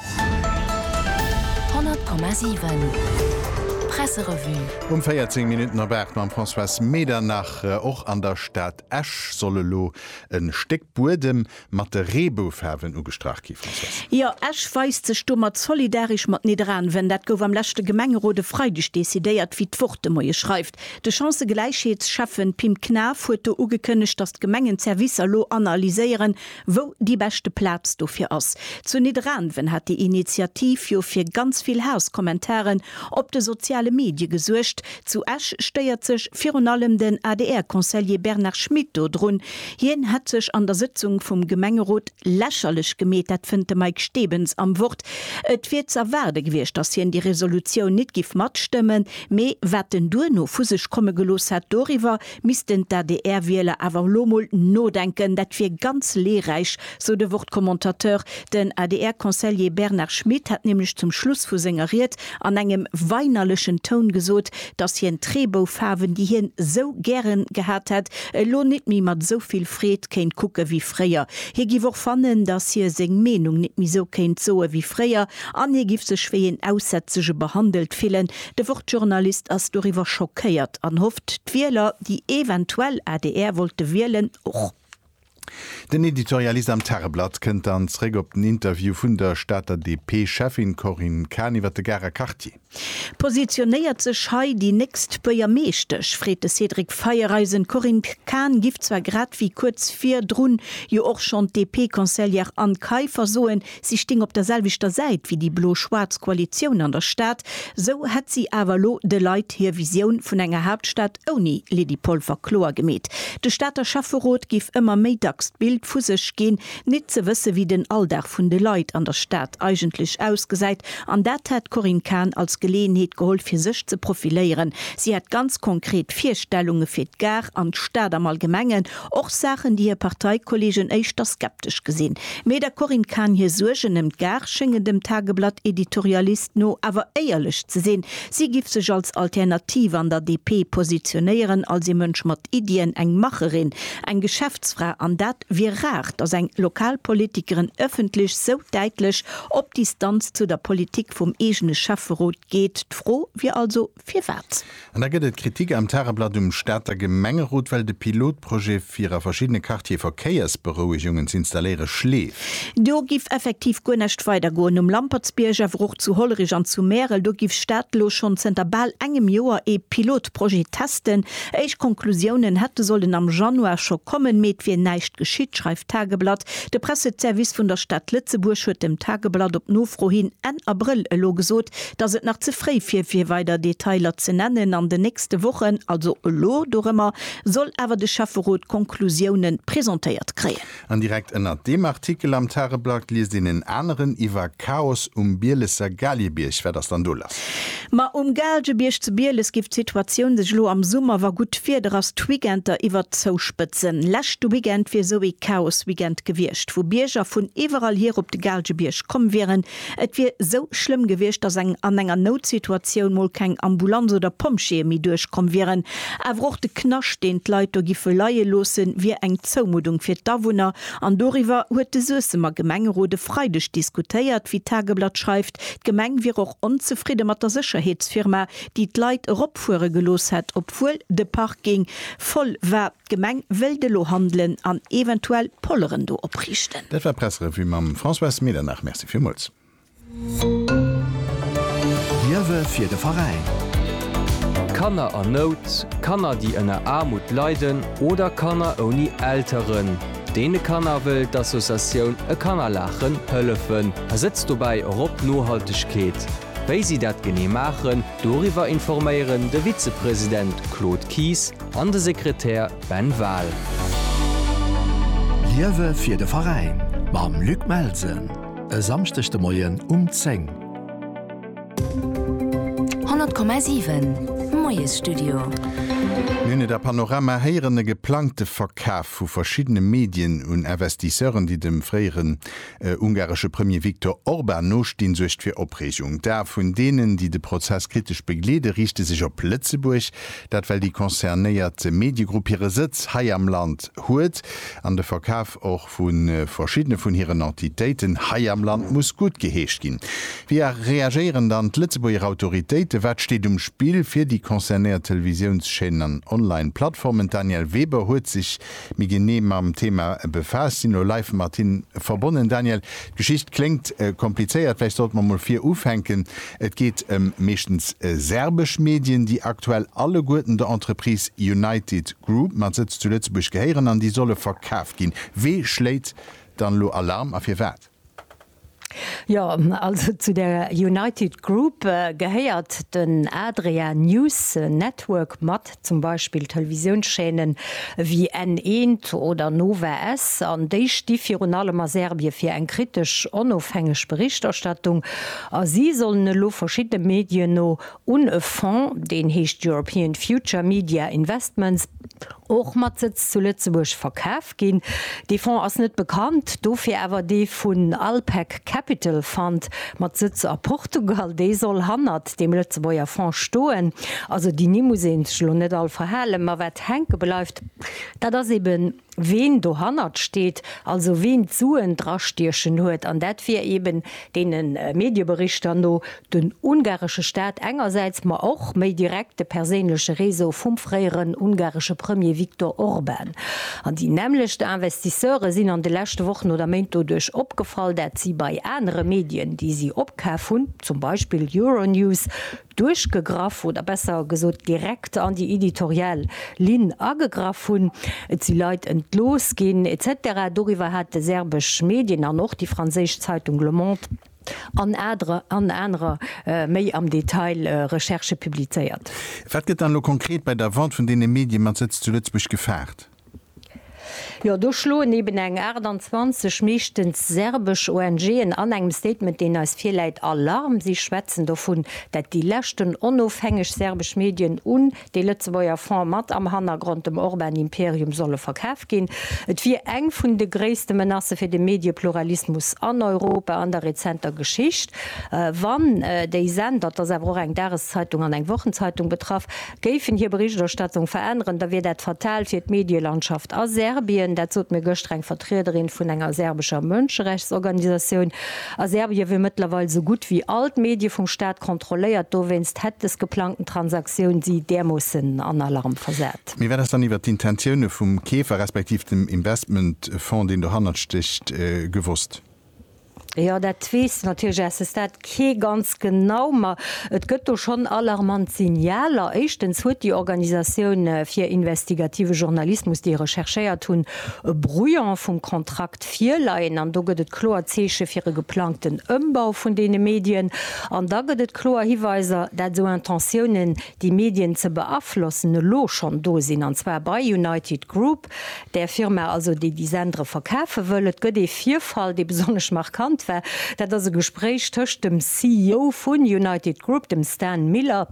100,7 Presserevue. Um 14 Minutten op 8 mam Françoise Medernach. Och an der Stad Esch soll elo e Stéck Buedem mat de Reeboufaarwen ugestrach ginn, Françoise. Jo, Esch weist sech domat solidaresch mat Nidderaanwen. Dat gouf am leschte Gemengerot e Freideg decidéiert, wéi d'Wort de Moie schreift. De Chancëgläichheetsschäffen Pim Knaff huet do ugekënnegt, datt d'Gemengen d'Servicer elo analyséieren, Wou déi beschte Plaz dofir ass? Zu Nidderaanwen hat déi Initiativ jo fir ganz vill Haass-Kommentaren op de soziale Medie gesuergt. Zu Esch stéiert sech virun allem den ADR-Conseiller Bernard Schmit do drun. Hien hätt sech an der Sëtzung vum Gemengerot lächerlech gemeet, dat fënnt de Mike Stebens am Wort. Et wier z'erwaarde gewiescht, datt hien déi Resolutioun nit giff matstëmmen, mee wat en duerno vu sech komme gelooss hätt, doriwwer Missten d'ADR-Wieler awer elo mol nodenken, dat wier ganz leeräich, sou de Wort-Commentateur. Den ADR-Conseiller Bernard Schmit hat nämlech zum Schluss vu senger Ried an engem weinerlechen Toun gesot, datt hien d'Reeboufaarwen, déi hien sou gären gehat hätt, elo nit méi mat sou vill Freed kéint kucke wéi fréier. Hie giff och fannen, datt hie seng Meenung nit méi sou kéint soe wéi fréier an hie giff sech wéi een Aussätzege behandelt fillen. De Wort-Journalist ass doriwwer schockéiert an hofft, d'Wieler, déi eventuell adr wollte wielen, och. Den Editorialist am Tageblatt kënnt dann zeréck op den Interview vun der Stater DP-Cheffin Corinne Cahen iwwer de Garer Quartier. Positionéiert sech hei déi nächst Buergermeeschtesch? freet de Cédric Feiereisen. D'Corinne Cahen giff zwar grad wéi kuerz virdrun jo och schonn d'DP-Conseillère Anne Kaiffer soen, Si sting op der selwechter Säit wéi déi blo-schwaarz Koalitioun an der Stad, sou hätt si awer elo de Leit hir Visioun vun enger Haaptstad ouni Lydie Polfer kloer gemeet. De Stater Schäfferot géif ëmmer méi dacks d'Bild vu sech ginn, nit ze wësse wéi den Alldag vun de Leit an der Stad eigentlech ausgesäit an dat hätt d'Corinne Cahen als Geleeënheet geholl fir sech ze profiléieren. Si hätt ganz konkret Virstellunge fir d'Gare an d'Stad am Allgemengen, Och Saachen, déi hir Parteikollegen éischter skeptesch gesinn. Mee der Corinne Cahen hir Suergen ëm d'Gare schéngen dem Tageblatt-Editorialist no awer éierlech ze sinn. Si giff sech als Alternativ an der DP positionéieren, als ee Mënsch mat Iddien, eng Macherin, eng Geschäftsfra. An dat wier rar, datt eng lokal Politikerin ëffentlech esou däitlech op Distanz zu der Politik vum eegene Schäfferot geet. D'Fro wier also, Firwat? An da gëtt et Kritik am Tageblatt um Stater Gemengerot, well de Pilotprojet fir a verschiddene Quartiere Verkéiersberouegungen z'installéiere schleeft. Do giff effektiv guer näscht weider goen. Um Lampertsbierg, awer och zu Hollerich an zu Märel, do giff Stad elo schonn zënter bal engem Joer ee Pilotprojet testen. Éischt Konklusiounen hätte sollen am Januar scho kommen, mee et wier näischt geschitt, schreift d'Tageblatt. De Presseservice vun der Stad Lëtzebuerg huet dem Tageblatt op Nofro hin Enn Abrëll elo gesot, dass et nach ze fréi wier fir weider Detailer ze nennen. An den nächste Wochen, also elo dorëmmer, soll awer de Schäfferot d'Konklusioune presentéiert kréien. An direkt ënnert deem Artikel am Tageblatt liest een en aneren iwwer Chaos um Bielesser Gaaliebierg. Wat ass dann do lass? Ma um Gaalgebierg zu Bieles géif d'Situatioun sech elo am Summer, wa gutt Wieder ass, d'Weekender iwwer zouspëtzen. Leschte Weekend wier esou ee Chaos-Weekend gewiescht, wou Bierger vun iwwerall hier op de Gaalgebierg komm wieren, Et wier sou schlëmm gewiescht, datt eng an enger Noutsituatioun mol keng Ambulanz oder Pompjeeë méi duerchkomm wieren. Awer och de Knascht, deen d'Leit do giffe leie loossen, wier eng Zoumuddung fir d'Awunner. An doriwwer huet de Suessemer Gemengerot e Freideg diskutéiert. Wéi d'Tageblatt schreift, d'Gemeng wier och onzefridde mat der Sécherheetsfirma, déi d'Leit eropfuere gelooss hätt, obwuel de Parking voll war. D'Gemeng wëllt elo handelen an eventuell Polleren do opriichten. Dat war d'Pressrevue mam Françoise Medernach. Merci villmools. Liewe fir de Veräin! Kanner an Nout, Kanner déi ënner Aarmut leiden oder Kanner ouni Elteren, deene Kanner wëll d'Associatioun E Kanner Laachen hëllefen a setzt dobäi och op Nohaltegkeet. Wéi si dat genee maachen, doriwwer informéieren de Vizepresident Claude Kies, An de Sekretär Ben Wahl. Liewe fir de Veräin mam Luc Melsen e Samschdeg de Moien um 10. 100,7, Moiesstudio. Mir hunn et a Panorama héieren, e geplangte Verkaf vu verschiddene Medien un Investisseuren, déi dem fréiere E ungaresche Premier Viktor Orban no stinn, suergt fir Opreegung. D'Ae vun deenen, déi de Prozess kritesch begleede, riichte sech op Lëtzebuerg. Dat well déi concernéiert Mediegrupp hire Sëtz hei am Land huet an de Verkaf och vu verschiddene vun hiren Entitéiten hei am Land muss guttgeheescht ginn. Wéi reagéieren dann d'Lëtzebuerger Autoritéiten? Wat steet um Spill fir déi concernéiert Televisiounschaînen an Online-Plattformen? D'Danièle Weber huet sech Mir ginn ni mam Thema befaasst, sinn elo live mat him verbonnen. Daniel, d'Geschicht kléngt komplizéiert, vläicht sollte mer mol vir ufänken. Et geet ëm meeschtens serbesch Medien, déi aktuell alleguerten der Entreprise United Group mat Sëtz zu Lëtzebuerg gehéieren an déi solle verkaaft ginn. Wee schléit dann elo Alarm a firwat? Jo, also zu der United Group gehéiert den Adria News Network mat, zum Beispill Televisiounschaînen ewéi N1 oder Nova S. An déi sti virun allem a Serbien fir eng kritesch, onofhängeg Berichterstattung. A si sollen elo verschiddene Medien no un e Fonds, deen heescht European Future Media Investments, och mat Sëtz zu Lëtzebuerg, verkaf ginn. Dee Fonds ass net bekannt, dofir awer dee vun Alpek Capital Fund mat Sëtz a Portugal. Dee soll hannert deem Lëtzebuerger Fonds stoen. Also déi Nimm muss ee sech elo net all verhalen. Ma wat hänke bleift, dat ass eben ween dohannert steet, also ween d'Suen drastiechen huet, an dat wier eben deene Medieberichter no den ungaresche Staat engersäits, ma och méi direkt de perséinleche Réseau vum fréieren ungaresche Premier Viktor Orban. An déi nämmlecht Investisseure sinn an de leschte Wochen oder Méint doduerch opgefall, dat si bei anere Medien, déi si opkaf hunn, zum Beispill Euronews, duerchgegraff oder besser gesot direkt an déi editorial Linn agegraff hunn, et si Leit entlooss ginn, etc. Doriwwer hat de serbesch Medien an och déi franséisch Zeitung Le Monde an anerer méi am Detail Recherchë publizéiert. Wat gëtt dann elo konkret bei der Vente vun deene Mediemat-Sëtz zu Lëtzebuerg gefaart? Jo, do schloen eben eng 28 meeschtens serbesch ONGen an engem Statement, deen eis virläit, Alarm. Si schwätzen dovun, dat déi leschten onofhängeg serbesch Medien un de Lëtzebuerger Fonds mat am Hannergrond dem Orban-Imperium solle verkaf ginn. Et wier eng vun de gréisste Menacë fir de Mediepluralismus an Europa an der rezenter Geschicht, wann déi Sender, et ass awer och eng Dageszeitung an eng Wochenzeitung betraff, géifen hir Berichterstattung veränneren, da wier dat fatal fir d'Medielandschaft a Serbien. Dat sot mir gëschter eng Vertriederin vun enger serbescher Mënscherechtsorganisatioun. A Serbien wier mëttlerweil esou gutt wéi all d'Medie vum Staat kontrolléiert. Dowéinst hätt des geplangten Transaktioun si därmoossen an Alarm versat. Mee wat ass dann iwwer d'Intentioune vum Keefer respektiv dem Investmentfong, deen dohannert stécht, gewosst? Jo, dat weess natierlech eise Stat kee ganz genau, ma et gëtt do schonn alarmant Signaler. Éischtens huet déi Organisatioun fir investigative Journalismus, déi recherchéiert hunn, e Brouillon vum Kontrakt virleien. An do gëtt et kloer Zeeche fir e geplangten Ëmbau vun deene Medien. An da gëtt et kloer Hiweiser, dat esou Intentiounen, déi Medien ze beaflossen, elo schonn do sinn, an zwar bei United Group. Där Firma also, déi déi Sendere verkafe wëll. Et gëtt ee Virfall, dee besonnesch markant war. Dat ass e Gespréich tëscht dem CEO vun United Group, dem Stan Miller,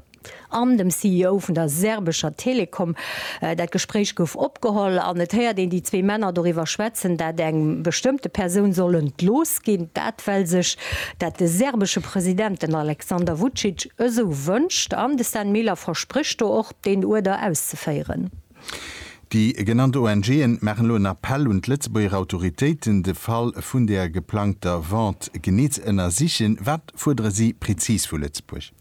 an dem CEO vun der serbescher Telekom. Dat Gespréich gouf opgeholl an et héiert een déi zwee Männer doriwwer schwätzen, dat eng bestëmmte Persoun soll entlooss ginn. Dat well sech dat de serbesche President, den Alexander Vucic, esou wënscht. An de Stan Miller versprécht do och, deen Uerder auszeféieren. Déi genannt ONG'en maachen elo en Appell un d'Lëtzebuerger Autoritéiten, de Fall vun der geplangter Vente genee ze ënnersichen. Wat fuerdere si prezis vu Lëtzebuerg?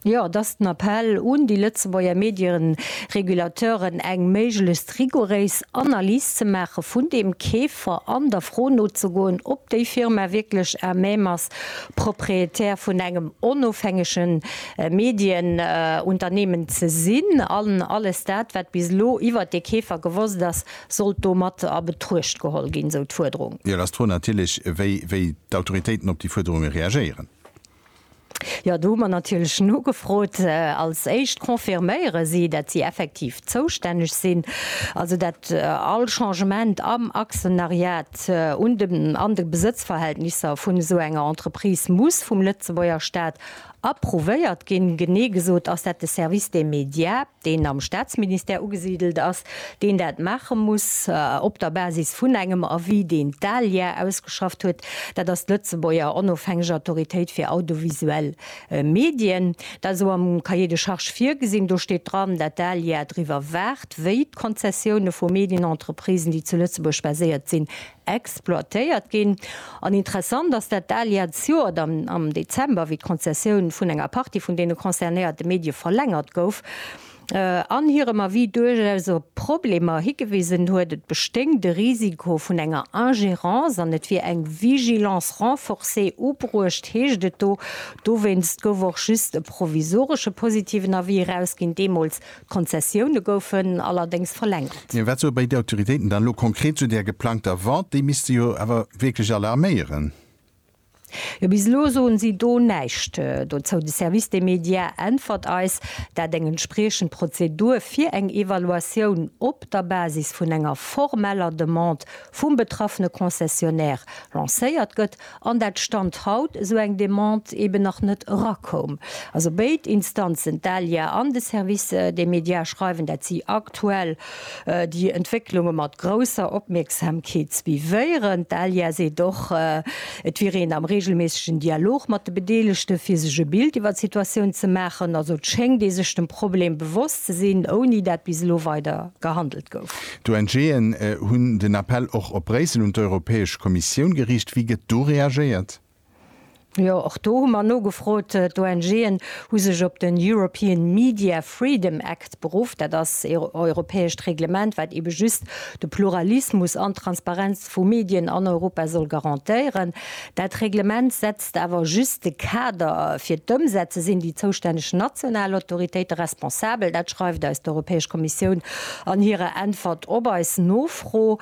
Jo, et ass den Appell un déi Lëtzebuerger Medieregulateuren, eng méiglechst rigoréis Analys ze maache vun deem Keefer an der Fro nozegoen, ob déi Firma wierklech à même ass, Propriétaire vun engem onofhängege Medienunternehmen ze sinn an alles dat, wat bis elo iwwert dee Keefer gewosst ass, sollt do mat a Betruecht geholl ginn, esou d'Fuerderung. Jo, et ass d'Fro natierlech, wéi d'Autoritéiten op déi Fuerderunge reagéieren. Jo, do hu mer natierlech nogefrot. Als éischt confirméiere si, datt si effektiv zoustänneg sinn, also datt all Changement am Aktionariat un de Besëtzverhältnisser vun esou enger Entreprise muss vum Lëtzebuerger Staat Approuvéiert ginn. Genee gesot ass dat de Service des médias, deen am Staatsministère ugesidelt ass, deen dat maache muss op der Basis vun engem Avis, deen d'ALIA ausgeschafft huet. Dat ass d'Lëtzebuerger onofhängeg Autoritéit fir audiovisuell Medien. Dat ass och am Cahier de charges virgesinn. Do steet dran, dat d'ALIA driwwer waacht, wéi d'Konzessioune vu Medienentreprisen, déi zu Lëtzebuerg baséiert sinn, exploitéiert ginn. An interessant ass dat al Jahrzjoert am Dezember, wéi d'Konzessioun vun enger Partie vun deene concernéierte Medie verlängert gouf an hirem Avis duerchaus op Problemer higewisen huet, et bestéing de Risiko vun enger Ingérence an et wier eng Vigilance renforcée ubruecht, heescht et do. Dowéinst gouf och just e provisoresche positiven Avis erausginn, deemools D'Konzessioune goufen allerdéngs verlängert. Mee wat soe bei d'Autoritéiten dann elo konkret zu där geplangter Vente? Déi misst se jo awer wierklech alarméieren. Jo, bis elo soen si do näischt dozou. De Service des médias äntwert eis, dat eng entspriechend Prozedur fir eng Evaluatioun op der Basis vun enger formeller Demande vum betraffene Concessionnaire lancéiert gëtt an dat Stand haut esou eng Demande eben nach net erakoum. Also béid Instanzen, d'ALIA an de Service des médias, schreiwen, dat si aktuell déi Entwécklunge mat grousser Opmierksamkeet suivéieren. D'ALIA seet och, et wier een am reegelméissegen Dialog mat de Bedeelegte fir sech e Bild iwwer d'Situatioun ze maachen. Also et schéngt ee sech dem Problem bewosst ze sinn, ouni dat bis elo weider gehandelt gouf. D'ONGen hunn den Appell och op Bréissel un d'Europäesch Kommissioun geriicht. Wéi gëtt do reagéiert? Jo, och do hu mer nogefrot. D'ONGen hu sech op den European Media Freedom Act beruff. Dat ass ee europäescht Reglement, wat eebe just de Pluralismus an d'Transparenz vu Medien an Europa soll garantéieren. Dat Reglement setzt. Ass awer just de Kader. Fir d'Ëmsetze sinn déi zoustänneg national Autoritéite responsabel. Dat schreift eis d'Europäesch Kommissioun an hirer Äntwert op eis Nofro.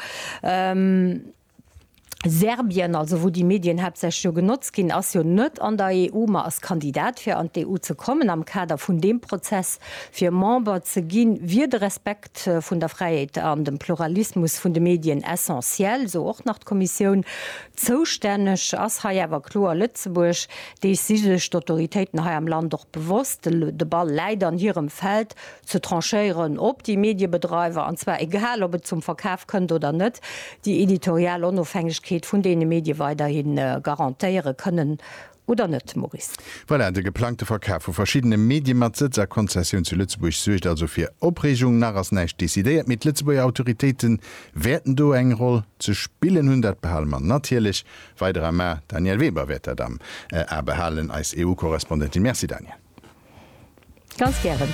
Serbien, also wou déi Medien haaptsächlech jo genotzt ginn, ass jo net an der EU, ma ass Kandidat fir an d'EU ze kommen. Am Kader vun deem Prozess fir Member ze ginn, wier de Respekt. Respekt vun der Fräiheet an dem Pluralismus vun de Medien essentiel, esou och nach d'Kommissioun. Zoustänneg ass hei awer kloer Lëtzebuerg. Dees si sech d'Autoritéiten hei am Land och bewosst. De Ball läit an hirem Feld, ze tranchéieren, ob déi Mediebedreiwer, an zwar egal ob et zum Verkaf kënnt oder net, déi editorial Onofhängegkeet vun deene Medie weiderhi garantéiere kënnen oder net, Maurice? Voilà, de geplangte Verkaf vu verschiddene Medie mat Sëtz a Konzessioun zu Lëtzebuerg suergt also fir Opreegung. Nach ass näischt decidéiert, mee d'Lëtzebuerger Autoritéite wäerten do eng Roll ze spillen hunn. Dat behale mer natierlech weider am A. D'Danièle Weber wäert dat am A behalen, eis EU-Korrespondentin. Merci Danièle. Ganz gären.